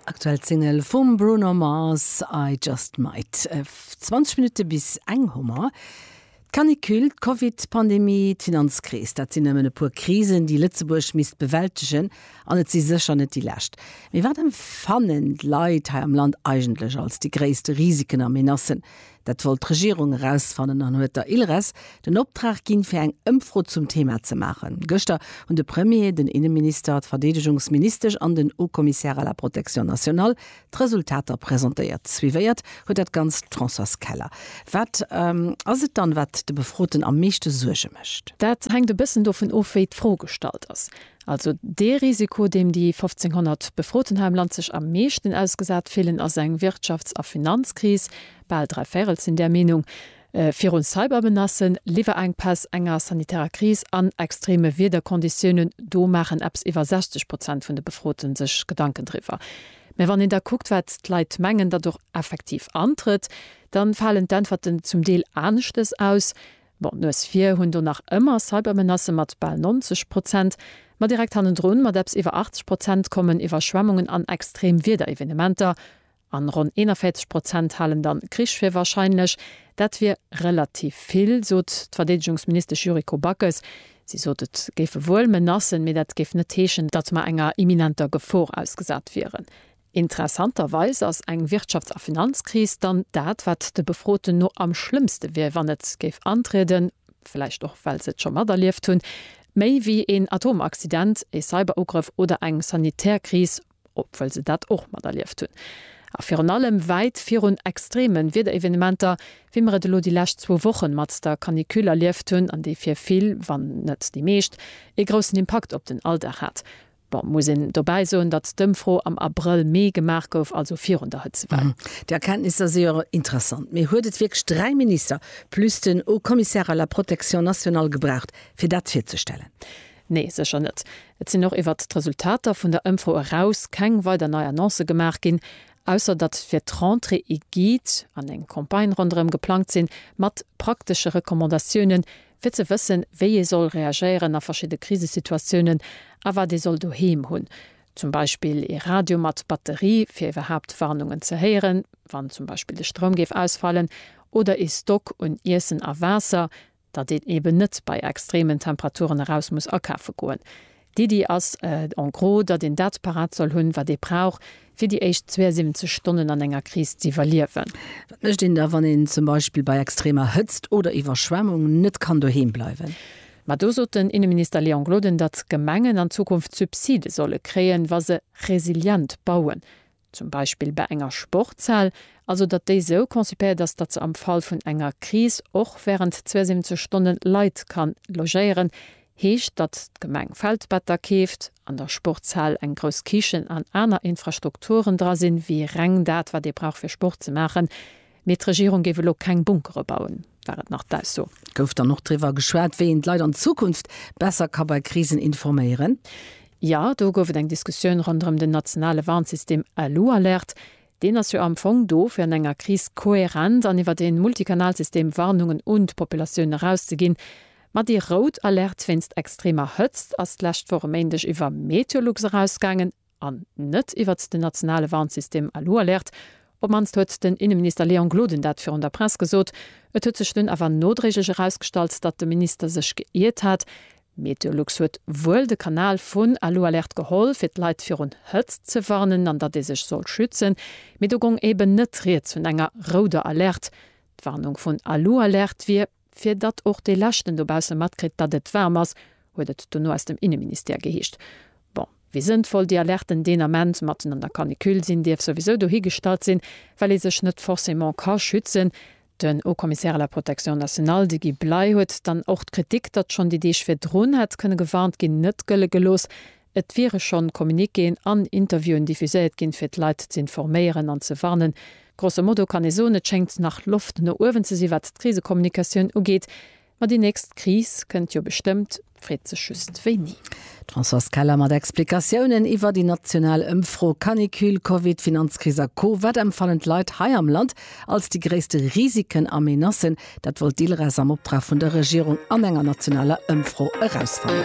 Aktuell d'Single vum Bruno Mars I just might. 20 Minutte bis eng hu mer. D'Canicule, d'Covid-Pandemie, d'Finanzkris, dat sinn nëmmen e puer Krisen, déi Lëtzebuerg misst bewältegen. An et si sécher net déi lescht. Mee wat emfannen d'Leit hei am Land eigentlech als déi gréisste Risiken a Menacen? Dat wollt d'Regierung erausfannen an huet der Ilres den Optrag ginn, fir eng Ëmfro zum Thema ze maachen. Gëschter hunn de Premier, den Inneminister, d'Verdeedegungsministesch an den Haut-Commissaire à la protection nationale d'Resultater presentéiert. Suivéiert huet dat Ganzt d'Françoise Keller. Wat ass et dann, wat de Befroten am meeschte Suerge mécht? Dat hänkt e bëssen dovun of, wéi d'Fro gestallt ass. Also dee Risiko, deem déi 1.500 Befroten hei am Land sech am meeschten ausgesat fillen, ass eng Wirtschafts a Finanzkris, bal dräi Véirel sinn där Meenung, virun Cybermenacen, Liwwerenkpäss, enger sanitärer Kris an extreme Wiederkonditiounen, do maachen eppes iwwer 60 Prozent vun de Befrote sech Gedanken driwwer. Mä wann een da kuckt, wat d'Leit mengen, datt och effektiv antrëtt, da falen d'Äntwerten zum Deel aneschtes aus. Bon, d'Nues vir hunn do nach ëmmer Cybermenacë mat bal 90 Prozent, ma direkt hannendrun mat eppes iwwer 80 Prozent kommen Iwwerschwemmungen an extrem Wiederevenementer, an ronn 41 Prozent halen dann Krich fir warscheinlech. Dat wier relativ vill, sot d'Verdeedegungsministesch Yuriko Backes. Si sot, et géife wuel Menacen, mee dat géif net heeschen, datt mer enger imminenter Gefor ausgesat wieren. Interessanterweis ass eng Wirtschafts a Finanzkris dann dat, wat de Befroten no am schlëmmste wier, wann et géif antrieden, vläicht och well se et scho materlieft hunn, méi wéi een Atomaccident, ee Cyberugrëff oder eng sanitär Kris, obwuel se dat och materlieft hunn. A virun allem wäit virun extreme Wiederevenementer, wéi mer et elo déi lescht zwou Wochen mat der Canicule erlieft hunn an déi fir vill, wann net déi meescht, ee groussen Impakt op den Alldag hat. Bon, muss een dobäi soen, datt d'Ëmfro am Abrëll, Mee gemaach gouf, also virun der Hëtzewell. Déi Erkenntnisser si jo interessant. Mee huet et wierklech dräi Minister plus den Haut Commissaire à la protection nationale gebraucht, fir dat virzestellen? Nee, sécher net. Et sinn och iwwert d'Resultater vun der Ëmfro eraus keng weider nei Annoncë gemaach ginn, ausser datt fir d'Rentrée ee Guide an eng Campagne ronderëm geplangt sinn, mat praktesche Recommandatiounen, fir ze wëssen, wéi ee soll reagéieren a verschidde Krisesituatiounen a wat ee soll doheem hunn, zum Beispill ee Radio mat Batterie, fir iwwerhaapt Warnungen ze héieren, wann zum Beispill de Stroum géif ausfalen, oder ee Stock un Iessen a Waasser, datt een eeben net bei extremen Temperaturen eraus muss akafe goen. D'Iddi ass en gros, datt een dat parat soll hunn, wat ee brauch, fir déi éischt 72 Stonnen an enger Kris z'iwwerliewen. Wat mécht een da, wann een zum Beispill bei extremer Hëtzt oder Iwwerschwemmung net kann doheem bleiwen? Ma do sot den Inneminister Léon Gloden, datt d'Gemengen an Zukunft Subside solle kréien, wa se resilient bauen. zum Beispill bei enger Sportshal, also datt déi sou concipéiert ass, datt se am Fall vun enger Kris och während 72 Stonne Leit kann logéieren, heescht, datt d'Gemeng Feldbetter keeft, an der Sportshal eng grouss Kichen an aner Infrastrukturen dra sinn, wéi reng dat, wat ee brauch fir Sport ze maachen. Mee d'Regierung géif elo keng Bunkere bauen, war et nach d'Ausso. Gouf dann och driwwer geschwat, wéi een d'Leit an Zukunft besser ka bei Krisen informéieren? Jo, do gouf et eng Diskussioun ronderëm den nationale Warnsystem LU Alerte. Deen ass jo am Fong do, fir an enger Kris kohärent an iwwert ee Multikanalsystem Warnungen un d'Populatioun erauszeginn. Ma déi rout Alerte wéinst extremer Hëtzt ass d'lescht Woch e Méindeg iwwer Meteolux erausgaangen. an net iwwert den nationale Warnsystem Alualerte, op d'mannst huet den Inneminister Léon Gloden dat virun der Press gesot. Et huet sech dunn awer nodréiglech erausgestallt, datt de Minister sech geiert hat. Meteolux huet wuel de Kanal vun Alualerte geholl, fir d'Leit virun Hëtzt ze warnen an datt ee sech soll schützen, mee do gong eben net rieds vun enger rouder Alerte. D'Warnung vun Alualerte wier. Fir datt och dee Leschten dobausse matkritt, datt et waarm ass, huet et dono aus dem Inneministère geheescht. Bon, wéi sënnvoll déi Alerten deen Ament matten an der Canicule sinn, dierf souwisou dohigestallt sinn, well ee sech net forcément ka schützen. Den Haut-Commissaire à la Protection nationale, de Guy Bley, huet dann och d'Kritik, datt schonn déi Deeg virdrun hätt kënne gewarnt ginn, net gëlle gelooss, Et wiere schonn Communiquéen an Interviewen diffuséiert ginn, fir d'Leit z'informéieren an ze warnen. Grosso modo kann ee soen, et schéngt nach Loft no uewen ze sinn, wat d'Krisekommunikatioun ugeet. Ma déi nächst Kris kënnt jo bestëmmt, d'Freet sech just wéini. D'Françoise Keller mat Explikatiounen iwwer déi national Ëmfro, Canicule, Covid, Finanzkris a Co. Wat empfannen d'Leit hei am Land als déi gréisste Risiken a Menacen? Dat wollt d'ILRES am Optrag vun der Regierung an enger nationaler Ëmfro erausfannen.